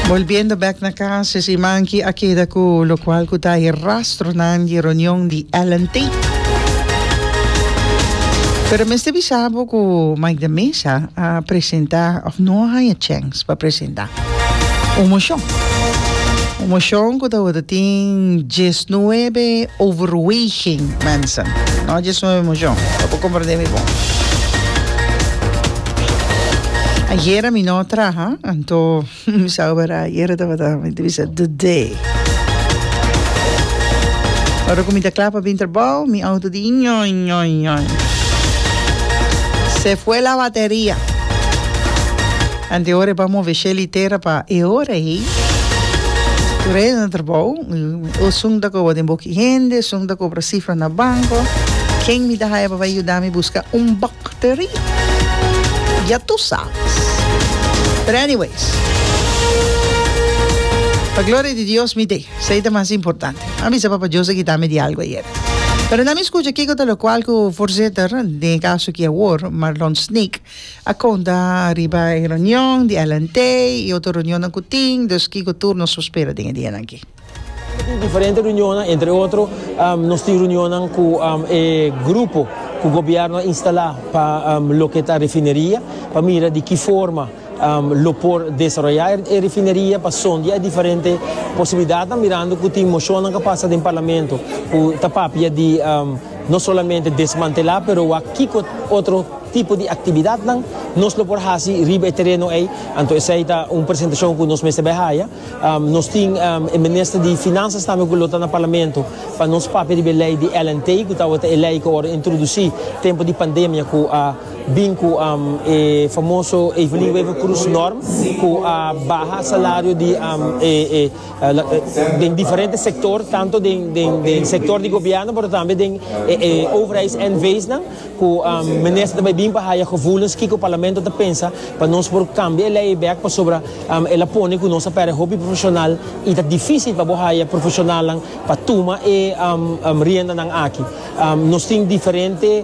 Bolbiendo bek na cas es imanki a keda cu locual cu ta e rastronan di e reunion di Ellen Tate. Pero mester bisa bo cu Mike de Meza a presenta of no a haya chens pa presenta un mocion. Un mocion cu ta worde tin diesnuebe overweging, mensen. No diesnuebe mocion, pa bo comprende mi bon. Ayera mi no traha, anto mi sa obera ayera tabata mi te bisa today. Ora ku mi ta kla pa bin trabou, mi auto di ñoi ñoi ñoi. Se fue la bateria. Ante ora e ba move Shelly Tera pa e ora ei. Ku reda na trabou, o sung ta koba den boki hende, sung ta kobra sifra na banko. Ken mi ta haya pa bai yuda mi buska un bak? Teri. Ya tu sabes. Pero anyways. Pa gloria di Dios mi te. Esei ta mas importante. A bisa Papa Jose kita mi di algo ayer. Pero na mi scucha kico ta locual cu voorzitter, den e caso aki awor, Marlon Sneek, a conta riba e reunion di LNT y otro reunionnan cu tin. Dus kico tur nos lo spera den e dianan aki? Tin diferente reunionnan, entre otro nos tin reunionnan cu e grupo cu gobierno a instala pa loke ta refineria, pa mira di ki forma lo por desaroya e refineria, pa sondia e diferente posibilidadnan, mirando cu tin mocionnan cu a pasa den parlamento cu ta papia di no solamente desmantela pero wak kico otro tipo di actividadnan nos lo por haci riba e tereno ey, anto esey ta un presentacion cu nos mester bay haya. Nos tin e Minister di Finanzas tambe cu lo ta na Parlamento pa nos papia riba e ley di LNT cu tawata e ley cu awor a introduci tempo di pandemia cu a bin cu e famoso Evelyn Wever Croes norm cu a baha salario di den diferente sector tanto den sector di Gobierno pero tambe den e overheids NV's nan. Ku Minister ta bai bin pa haya gevoelens kiko Parlamento ta pensa pa nos por kambia e lei ei bek pasobra el a pone ku nos a pèrdè hopi profeshonal i ta difísil pa bo haya profeshonalnan pa tuma e riendanan aki. Nos tin diferente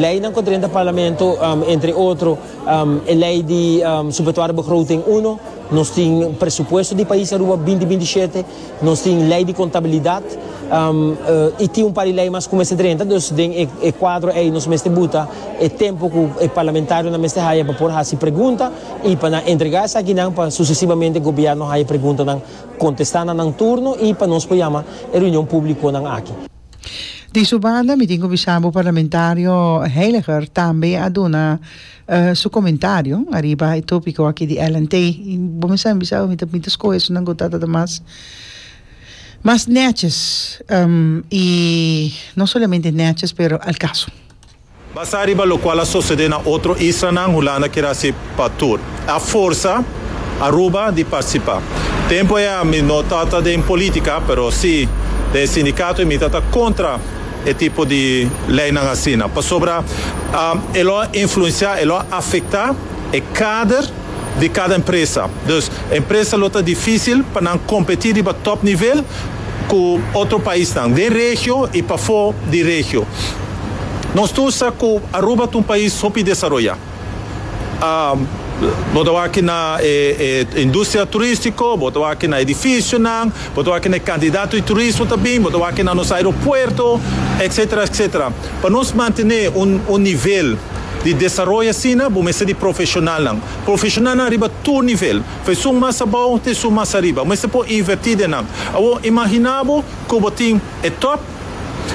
leinan ku ta drentu Parlamento entre otro e lei di Subetuado Begroting uno, nos tin Presupuesto di Pais Aruba binti binti shete, Nos tin lei di contabilidad y tin un par di lei mas cu mester drenta, dus den e cuadro ey nos mester buta e tempo cu e parlamentarionan mester haya pa por haci pregunta y pa nan entrega esakinan pa sucesivamente e gobierno haya preguntanan contesta na nan turno y pa nos por yama e reunion publiconan aki. Di su banda mi tin cu bisa bo parlamentario Heiliger tambe a duna Su comentario ariba e topico aki di Ellen Tey y bo mester a bisa mi ta pinta scoge esunat cu ta tabata mas mas neches y no solamente neches pero al caso. Basa riba locual a socede na otro islanan Hulanda kier haci pa tur. A forsa Aruba di participa. Tempo ea mi no ta ta den politica pero si den sindicato y mi ta ta contra. e tipo di leinan asina pasobra e lo a influenciá, e lo a afectá e kader di kada empresa. Dus e empresa lo ta difísil pa nan kompetí riba tòp nivel ku otro paisnan den regio i pafó di regio. Nos ta usa ku Aruba ta un pais hopi desaroyá. Bo ta wak na e industria turistico, bo ta wak na edificionan, bo ta wak na e cantidad di turismo ta bin, bo ta wak na nos aeropuerto, etc. Etc. Pa nos mantene un nivel di desaroyo asina bo mester di profesionalnan, profesionalnan riba tur nivel, fa esun mas abao ta esun mas ariba, bo mester por inverti den nan. Awor, imagina bo cu bo tin e top,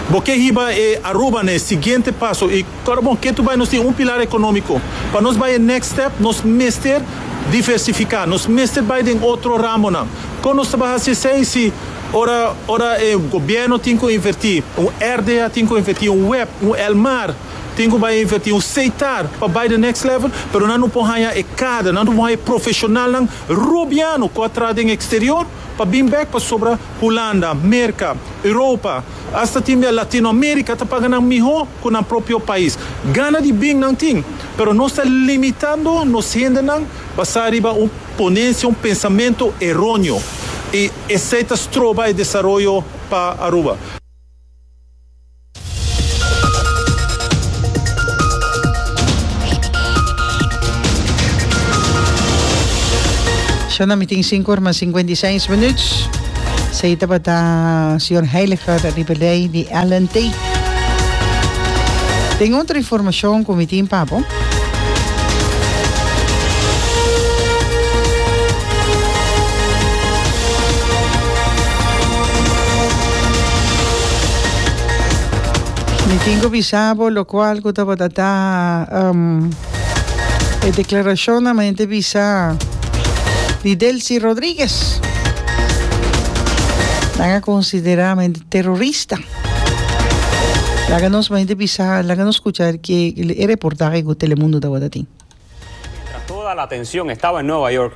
bo ke hiba e Aruba na e siguiente paso y. Kòrda bon, ke tu bai nos tin un pilar ekonómiko. Pa nos bai e next step nos mester diversifiká, nos mester bai den otro ramonan. Kon nos ta bai hasi esei si ora ora e gobièrnu tin ku invertí, un RDA tin ku invertí, un web, un el mar tin ku bai invertí, un Seitar pa bai den next level, pero nan no por haña e kader, nan no por haña e profeshonalnan robiano ku a traha den eksterior pa bin bèk pasobra Hulanda, Merka, Europa, Asta tin bia Latinoamérica ta paga nan mihó cu nan propio pais. Gana di bin nan tin, pero nos ta limitando nos hendenan basá riba un ponencia, un pensamento eróneo y esey ta stroba e desaroyo pa Aruba. Shona mi tin sinku orma cincuenta y seis minuut. Sei tabata Señor Heiliger riba lei di Ellen Tate. Tin otro informacion cu mi tin pa bo. Mi tin cu bisa bo locual cu tabata ta. E declaracionnan men te bisa di Delcy Rodriguez. Nan a considera men di terrorista. Laga nos men te bisa, laga nos escucha e reportaje cu Telemundo tabata tin. Mientras toda la atención estaba en Nueva York,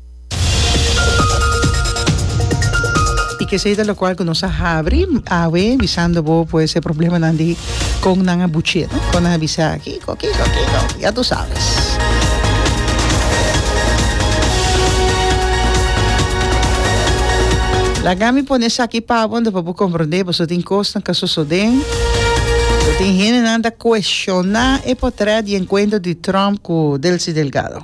Y ke esei ta lokual ku nos a habri awe bisando bo pues e problemanan di kon nan a buch'é, no? Kon nan a bisa kiko, kiko, kiko, ya tu sabes. Laga mi pone esaki pa bo anto pa bo komprondé pasobra tin kosnan ku a sosodé. Tin hendenan ta kueshoná e potrèt i e enkuentro di Trump ku Delcy Delgado.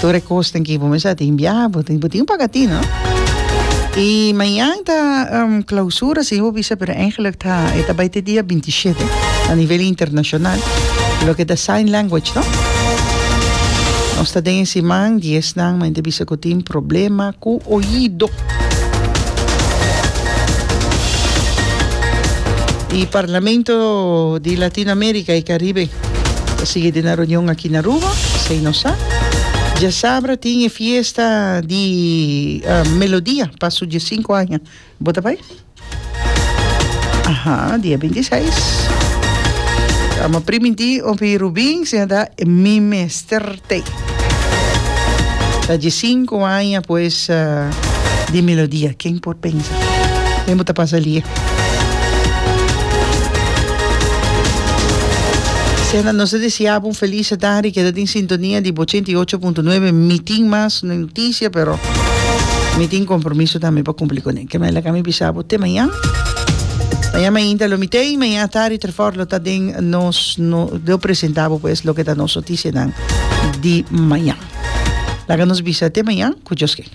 Tur e kos tin ki bo mester tin biaha bo tin bo tin paga tin no y mañan ta clausura si bo bisa pero eigenlijk ta e ta bai te dia binti y shete a nivel internacional loke ta sign language no nos ta den e siman dies nan men ta bisa ku tin problema ku oido y parlamento di Latino America y Caribe Ta sigui den e reunion aki na Aruba, esei no sa. Diasabra tin e fiesta di Melodia pa su diesinku aña. Bo ta bai? Aha, dia bintiseis. Amo primintí, hopi Rubin, siña ta mi mester. Te. Ta dje sinku aña pues di Melodia, ken por pensa den bo ta pasa alié. Sena nos ta deseabo un felis tardi, keda den sintonia di ochenta i ocho punto nuebe, mi tin mas no e notisia pero mi tin kompromiso tambe pa kumpli kuné, ke mayor lak ami bisabo te mañan, mañan mainta lo mi ta ei, mañan atardi. Por lo ta den nos no lo presenta bo pues loke ta nos noticianan di mañan. Laga nos bisa te mañan cu Dios ken.